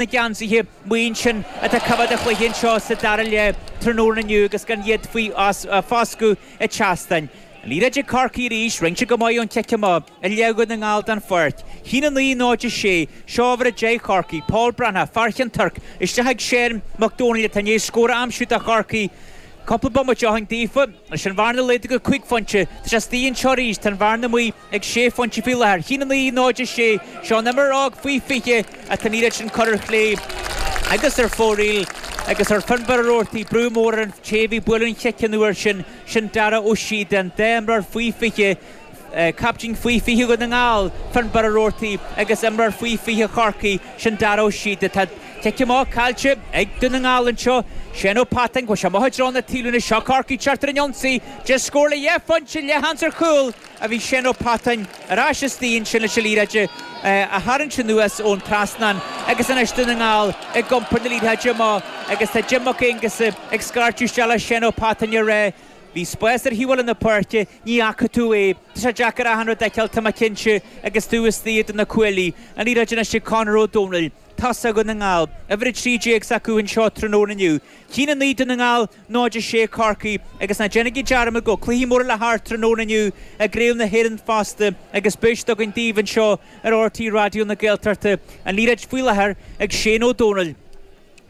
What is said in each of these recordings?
na geansaithe maith sin atá ag coimeád an chluiche anseo sa dara leath tráthnóna inniu agus gan iad faoi foscadh ag teastáin. Liathróid ag Corcaigh arís, rince go maith ón chic amach a leag Dún na nGall den pháirc. Chinn 9 0 6, seo uimhir 10 Chorcaí, Pól Breathnach, fear Ceann Toirc, isteach ag Séan Mac Domhnaill atá i ndéis scór a aimsiú do Chorcaí cúpla bomaite ó shin daofa. Leis an bhearna laghdaithe go 5 phointe, tá sé suas anseo arís, tá an bhearna amuigh. Ag sé phointe faoi láthair, chinn 9, 0, 6, seo an imreoir óg faoi 20 atá i ndéis sin a chur ar chlé agus ar fóraoil agus chuir Fionnbarr Ó Rabhartaigh brú mór ar an té a bhí ag bualadh an chic an uair sin, sin Dara Ó Síodacháin dhá imreoir faoi 20, caiptín faoi 20 Dhún na nGall, Fionnbarr Ó Rabhartaigh agus imreoir faoi 20 Chorcaí, sin Dara Ó Síodacháin. Tá cic amach caillte ag Dún na nGall anseo. Séan Ó Pattáin, bhuail sé amuigh i dtreo na taobhlíne, seo Corcaigh, tigtear ar an ionsaí, de scór le dhá phointe, leathshans ar chúl, ach bhí Séan Ó Pattáin ar ais istigh ansin leis an liathróid a tharraingt anuas ón trasnán agus anois Dún na nGall ag iompar na liathróide amach agus tá Jim Mac Aonghusa ag scairteadh isteach le Séan Ó Pattáin ag rá bhí spás ar thaobh eile na páirce ní fhaca tú é tá sé deacair achan rud a fheiceáil tá mé cinnte agus tú istigh idir na cuaillí an liathróid anois ag Conor Ó Domhnaill tosaigh Dhún na nGall uimhir a trí déag s'acu anseo tráthnóna inniu chinn a naoi Dún na nGall 0-6 Chorcaí agus ná déanaigí dearmad go bhfuil cluichí móra le himirt tráthnóna inniu i gCraobh na hÉireann fosta agus beidh siad againn daoibh anseo ar RTÉ Raidió na Gaeltachta. An liathróid faoi láthair ag Shane Ó Domhnaill,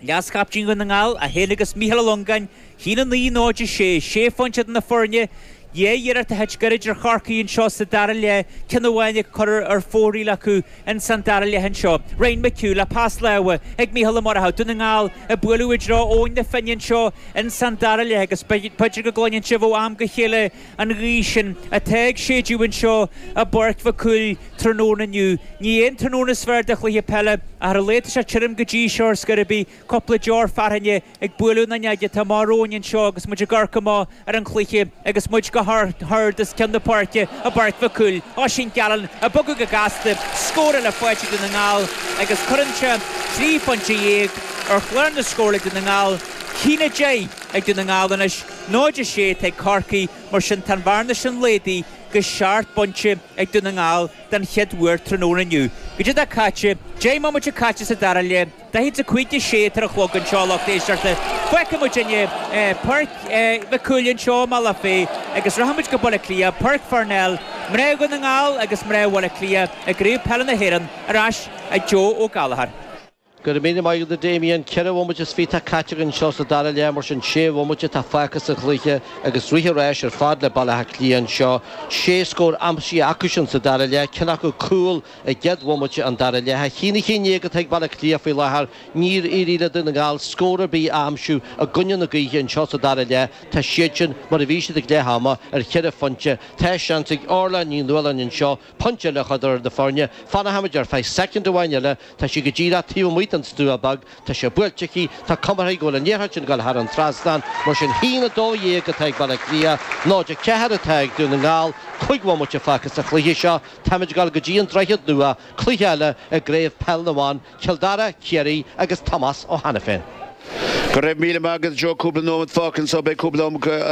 leaschaptaen Dhún na nGall, é féin agus Mícheál Ó Longáin, chinn 9, 0-6, sé phointe idir na foirne dhá iarracht a thit gairid ar Chorcaí anseo sa dara leath, ceann amháin curtha ar fóraoil acu. Ins an dara leath anseo, Ryan McHugh le pas láimhe ag Micheál Ó Murchú, Dún na nGall ag bualadh i dtreo Abhainn na Finne anseo ins an dara leath agus b'fhéidir go gcluineann sibh ó am go chéile an ghaoth sin atá ag séideadh anseo i bPáirc Mhic Cumhaill tráthnóna inniu. Ní hé an tráthnóna is fearr do chluiche peile, ach ar a laghad tá sé tirim go dtí seo ar scor ar bith. Cúpla deor fearthainne ag bualadh na fuinneoige atá amach romhainn anseo agus muid ag amharc amach ar an chluiche agus muid go hard os cionn na páirce, i bPáirc Mhic Cumhaill. Oisín Gallen ag bogadh go gasta, scór eile faighte ag Dún na nGall agus cuireann sin trí phointe dhéag ar chlár na scór ag Dún na nGall. Chinn a deich ag Dún na nGall anois, 0, 6 atá ag Corcaigh, mar sin tá an bhearna sin méadaithe go seacht bpointe ag Dún na nGall den chéad uair tráthnóna inniu. Goidé atá caite, deich mbomaite caite sa dara leath. Beidh tú ceart, tá sé cúig i ndéis a ceathair a chlog anseo a lucht éisteachta. Fágfaidh muid inniu Páirc Mhic Cumhaill anseo i mBealach Féich agus rachaidh muid go Baile Átha Cliath, Páirc Pharnell. Mná Dhún na nGall agus mná Bhaile Átha Cliath i gCraobh Peile na hÉireann ar ais ag Joe O Gallagher. Go raibh míle maith agat a Damien. Ceithre bhomaite is fiche atá caite againn anseo sa dara leath, mar sin sé bhomaite atá fágtha sa chluiche agus rith an ráis ar fad le Baile Átha Cliath anseo. Sé scór aimsithe acusan sa dara leath, ceann acu cúl, I gcéad bhomaite an dara leath, haon a haon déag atá ag Baile Átha Cliath faoi láthair. Níor éirigh le Dún na nGall scór ar bith a aimsiú i gcoinne na gaoithe anseo sa dara leath. Tá siadsan mar a bhí siad ag leath ama, ar cheithre phointe. Tá seans ag Orlagh Ní Nualláin anseo pointe eile a chur d'fhoireann na foirne. Fanfaimid ar feadh soicind amháin eile. Tá sí go díreach taobh amuigh den stua bog. Tá sé buailte aici. Tá cuma air go bhfuil an liathróid sin ag dul thar an trasnán. Mar sin haon a dó dhéag atá ag Baile Átha Cliath, 0 a ceathair atá ag Dún na nGall. Cúig bhomaite fágtha sa chluiche seo. Táimid ag dul go dtí an Droichead Nua, cluiche eile i gCraobh Peil na mBan, Cill Dara, Ciarraí agus Tomás Ó hAiniféin. Go raibh míle maith agat Joe cúpla nóimead fágtha anso beidh cúpla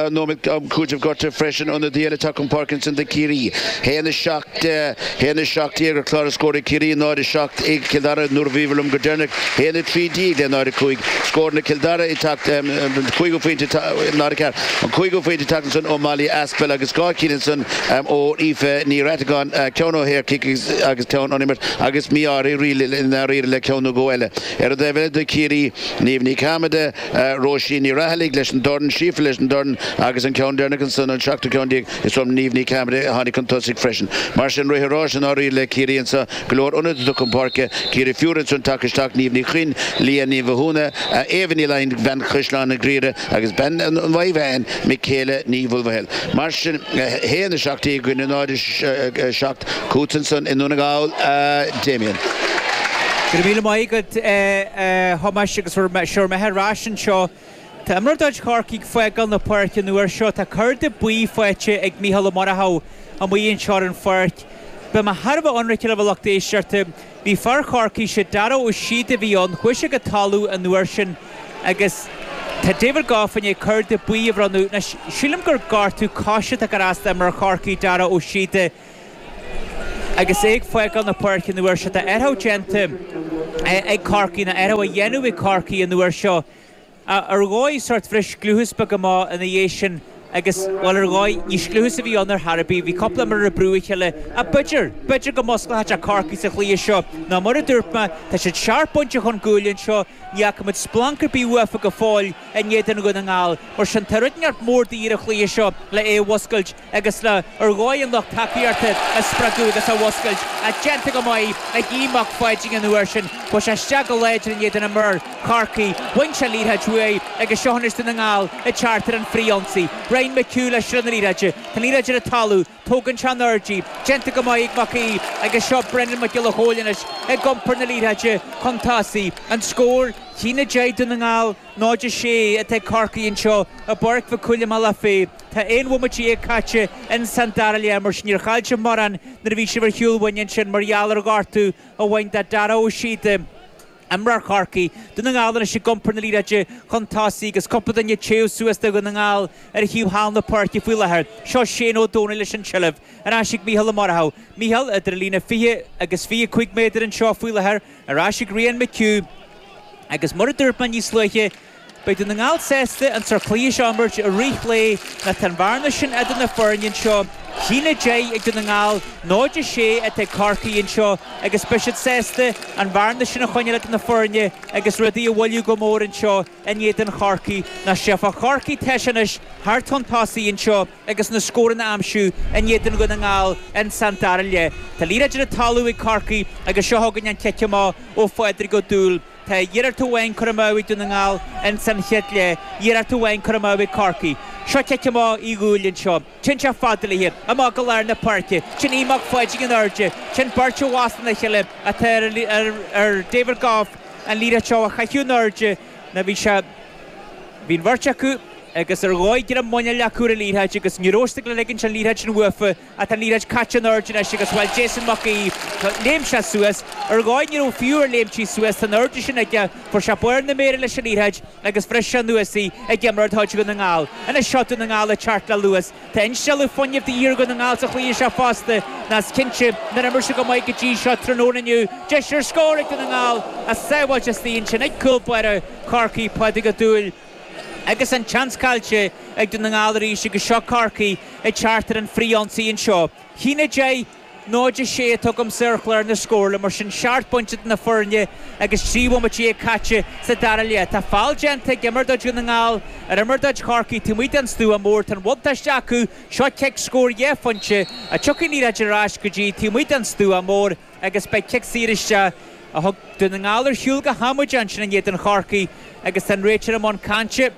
nóimead am cúiteamh gorta freisin ionadaí eile tagtha chun páirce ansan do Chiarraí. 1, 7, 1, 17 ar chlár na scór ag Ciarraí, 0, 7 ag Cill Dara nuair a bhíobhair liom go deireanach, 1, 13 le 0, 5 scóranna Chill Dara ag teacht an cúigiú pointe nó an ceathrú an cúigiú pointe ag teacht ansan ó Molly Aspell agus dhá cheann ansan. Ó Aoife Ní Reachtagáin, ceann ó shaorchic agus ceann ón imirt agus mí-ádh uirthi i ndáiríre le ceann nó dhó eile. Ar an dtaobh eile de Ciarraí, Niamh Ní Chearmada, Róisín Ní Raghallaigh leis an dorn, Síofra leis an dorn agus an ceann deireanach ansan an seachtú ceann déag is ó Niamh Ní Chearmada a tháinig chun tosaigh freisin. Mar sin rith an ráis i ndáiríre le Ciarraí anso, go leor ionadaithe chun páirce, Ciarraí fiúr ansan tagtha isteach Niamh Ní Chuinn, Leah Ní Mhathúna, Éabha Ní Laighin, Bean Chaisleáin an Ghriaire, agus bean an Mhaigh Mheáin, Mikaela Ní Mhaoilmhichíl. Mar sin, a haon a seacht i gcoinne náid a seacht chugat ansan i nDún na nGall, a Damien. Go raibh míle maith agat a Thomáis agus sé bhur mbeatha ar ais anseo. Tá imreoir de chuid Chorcaí ag fágáil na páirce an uair seo. Tá cárta buí faighte ag Micheál Ó Murchú amuigh anseo ar an pháirc. Beidh mé thar a bheith ionraic libh, a lucht éisteachta, Bhí fear Chorcaí, sé Darragh Ó Síoda a bhí ann, chuaigh sé go talamh an uair sin agus tá David Gough i ndiaidh cárta buí a bhronnadh. Sílim gur gortú cois atá ag cur as d'imreoir Chorcaí, Darragh Ó Síoda agus é ag fágáil na páirce an uair seo. Tá athrú déanta ag Corcaigh, nó athrú á dhéanamh ag Corcaigh an uair seo. Ar dhóigh, sórt bhris scliúchas beag amach ina dhiaidh sin agus, bhuel, ar dhóigh, ní scliúchas a bhí ann ar chor ar bith. Bhí cúpla imreoir ag brú a chéile ach b'fhéidir, b'fhéidir go musclóchadh sé Corcaigh sa chluiche seo nó mar a dúirt mé, tá siad seacht bpointe chun guaille anseo, ní fhaca muid splanc ar bith uafa go fóill in éadan Dhún na nGall. Mar sin, tá rud inteacht mór de dhíth ar an chluiche seo le é a mhuscailt. agus le ar dhóigh an lucht tacaíochta a spreagadh agus a mhuscailt a déanta go maith ag Aodh Mac Pháidín an uair sin. Chuaigh sé isteach go láidir in éadan imreoir Chorcaí. Bhain sé an liathróid uaidh agus seo anois Dún na nGall ag teacht ar an fhrithionsaí. Ryan McHugh le sruth na liathróide. Tá an liathróid ar an talamh. Tógann sé in airde í. Déanta go maith ag Mac Aoidh agus seo Brendan Mac Giolla Chomhaill anois ag iompar na liathróide chun tosaigh. An scór? Haon a deich Dún na nGall, 0-6 atá ag Corcaigh anseo i bPáirc Mhic Cumhaill i mBealach Féich. Tá aon bhomaite dhéag caite ins an dara leath mar sin níor chaill sibh mórán nuair a bhí sibh ar shiúl uainn ansin mar gheall ar ghortú a bhain do Dara Ó Síoda, imreoir Chorcaí, Dún na nGall anois ag iompar na liathróide chun tosaigh agus cúpla duine ag téamh suas do Dhún na nGall ar thaobh thall na páirce faoi láthair. Seo Shane Ó Domhnaill leis an tseilbh, ar ais ag Micheál Ó Murchadha. Micheál idir an líne fiche agus fiche cúig méadar anseo faoi láthair, ar ais ag Ryan McHugh agus mar a dúirt mé níos luaithe, Beidh Dún na nGall sásta an sórt cluiche seo a imirt i rith lae nó tá an bhearna sin idir na foirne anseo, 1-10 ag Dún na nGall, 0-6 atá ag Corcaigh anseo agus beidh siad sásta an bhearna sin a choinneáil idir na foirne agus rudaí a mhoilliú go mór anseo in éadan Chorcaí. Nach bhfaighidh Corcaigh deis anois theacht chun tosaigh anseo agus na scóranna a aimsiú in éadan Dhún na nGall ins an dara leath? Tá an liathróid ar an talamh ag Corcaigh agus seo chugainn an cic amach ó Phádraig Ó Dúill. Tá iarracht amháin curtha amú ag Dún na nGall ins an chéad leath, iarracht amháin curtha amú ag Corcaigh. Seo cic amach Uí Dhúill anseo. Téann sé fada léi. Amach go lár na páirce. Téann Aodh Mac Pháidín in airde. Téann beirt i bhfostú ina chéile atá ar David Gough an liathróid seo a chaitheamh in airde nó bhí sé, bhí an bheirt acu agus ar dhóigh greim muiníl acu ar an liathróid agus ní raibh siad ag dul a ligean an liathróid sin uafa. a tá an liathróid caite in airde anois agus, bhuel, Jason Mac Aoidh, léim sé suas. Ar dhóigh, ní raibh fiú air léimtí suas, tá an airde sin aige. Fuair sé barr na méire leis an liathróid agus bhris sé anuas í ag imreoir atá ag Dún na nGall. Anois, seo Dún na nGall ag teacht le luas. Tá instealladh fuinnimh de dhíth ar Dhún na nGall sa chluiche seo fosta, nó is cinnte nár imir siad go maith go dtí seo tráthnóna inniu. Deis ar scór ag Dún na nGall, ach sábháilte istigh ansin ag cúl báire Chorcaí, Pádraig Ó Dúill. Agus an tseans caillte ag Dún na nGall arís agus seo Corcaigh ag teacht ar an bhfrithionsaí anseo. 1-10, 0-6 atá againn anseo ar chlár na scórála mar sin seacht bpointe idir na foirne agus 13 bhomaite caite sa dara leath. Tá feall déanta ag imreoir de chuid Dhún na nGall ar imreoir de chuid Chorcaí. Taobh amuigh den stua mór tá an bhuntáiste acu. Seo cic scór dhá phointe ach tiocfaidh an liathróid ar ais go dtí taobh amuigh den stua mór. agus beidh cic saor isteach a thug Dún na nGall ar shiúl go hamaideach ansin in éadan Chorcaí agus tá an réiteoir i mbun cainte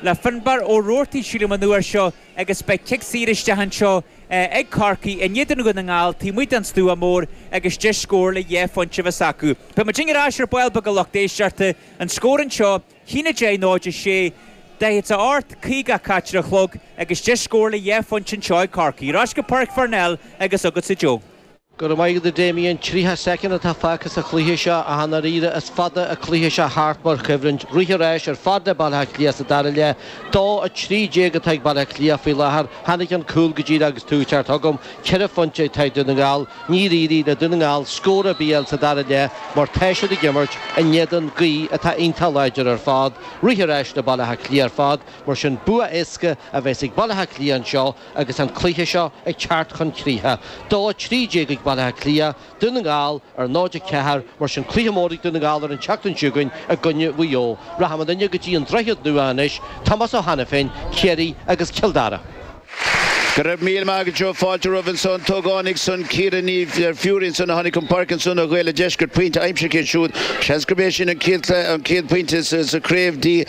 le Finbar Ó Robhartaigh, sílim, an uair seo agus beidh cic saor isteach anseo ag Corcaigh in éadan Dhún na nGall taobh amuigh den stua mór agus deis scórála dhá phointe a bheas acu. Beidh muidinne ar ais ar ball beag a lucht éisteachta, an scór anseo, 1-10, 0-6, 48, 54 ar an chlog agus deis scórála dhá phointe anseo ag Corcaigh. Ar ais go Páirc Pharnell agus chugatsa Joe. Go raibh maith agat a Damien. 30 soicind atá fágtha sa chluiche seo ach i ndáiríre is fada an cluiche seo thart mar choimhlint. Rith an ráis ar fad le Baile Átha Cliath sa dara leath. 2, 13 atá ag Baile Átha Cliath faoi láthair. Tháinig an cúl go díreach agus tú ag teacht chugam. Ceithre phointe atá ag Dún na nGall. Níor éirigh le Dún na nGall scór ar bith a fháil sa dara leath mar tá siad ag imirt in éadan gaoth atá iontach láidir ar fad. Rith an ráis le Baile Átha Cliath ar fad mar sin bua éasca a bheas ag Baile Átha Cliath anseo. Agus an cluiche seo ag teacht chun críche, 2, 13 ag Baile Átha Cliath, Dún na nGall ar 0, 4, mar sin cluiche mór ag Dún na nGall ar an tseachtain seo chugainn i gcoinne Mhaigh Eo. Rachaidh muidinne go dtí an Droichead Nua anois, Tomás Ó hAiniféin, Ciarraí agus Cill Dara. Go raibh míle maith agat Joe, fáilte romhaibh anso an t-ógánach san, Ciara Ní Fhearraigh ansan a tháinig chun páirce ansan ó Ghaeil an Deiscirt, pointe aimsithe aici siúd. Seans gurb é sin an chéad, an chéad phointe sa craobh di.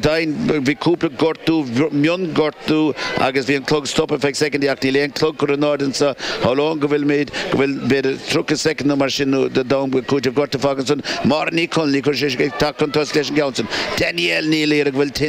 Dein, Bhí cúpla gortú, mionghortú agus bhí an clog stoptha feadh soicindí ach níl aon clog curtha in airde anso. Shamhlóinn go bhfuilimid, go bhfuil b'fhéidir 30 soicind nó mar sin de d'am ag cúiteamh gortú fágtha ansan. Máire Ní Chonaill, chuir sise ag teacht chun tosaigh leis an gceann san. Danielle Ní Laoire, go bhfuil tuin